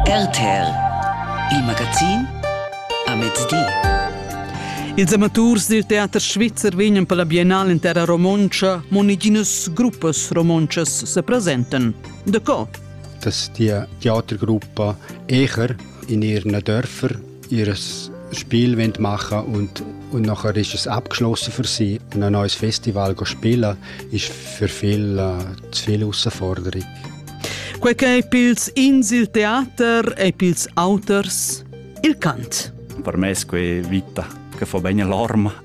RTL, il magazin a mezdi. Ils amaturs dil teater svizzer vegnan per la biennal in terra romontscha, mo neginas gruppas romontschas se presentan. Da co? Das die Theatergruppe Echer in ihren Dörfer ihr Spiel machen und, und nachher ist es abgeschlossen für sie. Und ein neues Festival spielen ist für viele äh, zu viel Herausforderung. Quei ch'ei pils ins il teater e pils auters il cant. Per me è quella vita che fa bene l'arma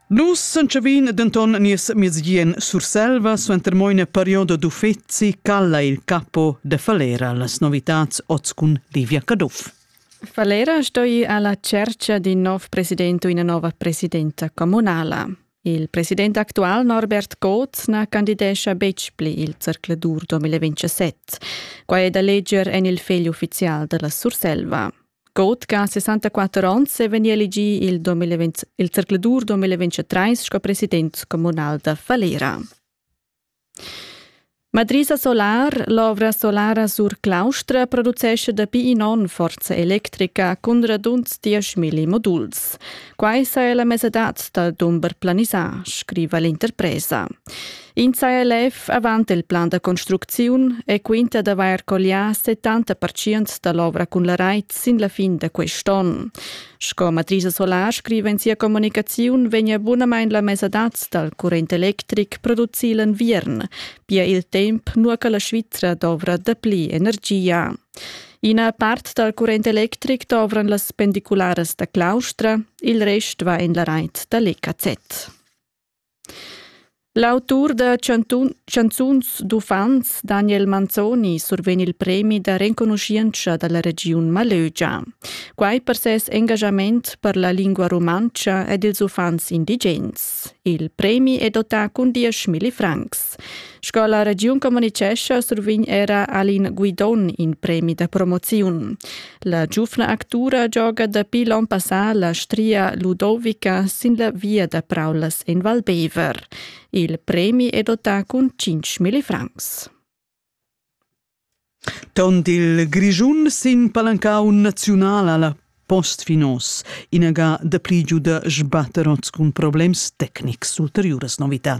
Nus s'entschavin denton nies miez bien Surselva suenter mo ina perioda d'uffeci calla il capo de Falera las novitats oz cun Livia Caduff. Falera stoi ir alla cerca d'in nov president u ina nova presidenta communala. Il president actual Norbert Koth na candidescha betg pli il zercladur 2027. Quai è da leger en il fegl uffizial della Surselva. Cotga ha 64 onns e vegni elegì il, 2020, il zercladur 2023 sco president communal da Falera. Madrisa Solar, l'ovra solara sur Claustra, producesce dapi in onn forza electrica cun radunds 10.000 moduls. Quai sa è la mesadad da dumber planisà, scriva l'interpresa. In saja lef avant il plan da construcziun e quinta d'avair collià 70 percient da l'ovra cun la rait sin la fin da quest'onn. Sco Matrisa Solar scriva in sia communicaziun, vegnia bunamain la mesadad dal current electric producì l'enviern, pia il temp nua che la Svizra dovra dapli energia. Ina part dal current electric dovran las pendicularas da Claustra, il rest va en la rait da l'EKZ. L'autur da chantun chanzuns d'uffants Daniel Manzoni survegn il premi da renconuschientscha da la regiun Malögia. Quai per ses engaschament per la lingua rumantscha ed ils uffants indigens. Il premi è dotà cun dieschmilli francs. Sco la regiun communicescha survign era Alin Guidon in premi da promoziun. La giufna actura gioga dapi l'on passà la stria Ludovica sin la via da praulas en Val Bever. Il premi è dotà cun 5.000 francs. Tont il Grischun sin palancau naziunal alla postfinos, inaga de pli giu de sbatter oz cun problems tecnics ulteriuras novità.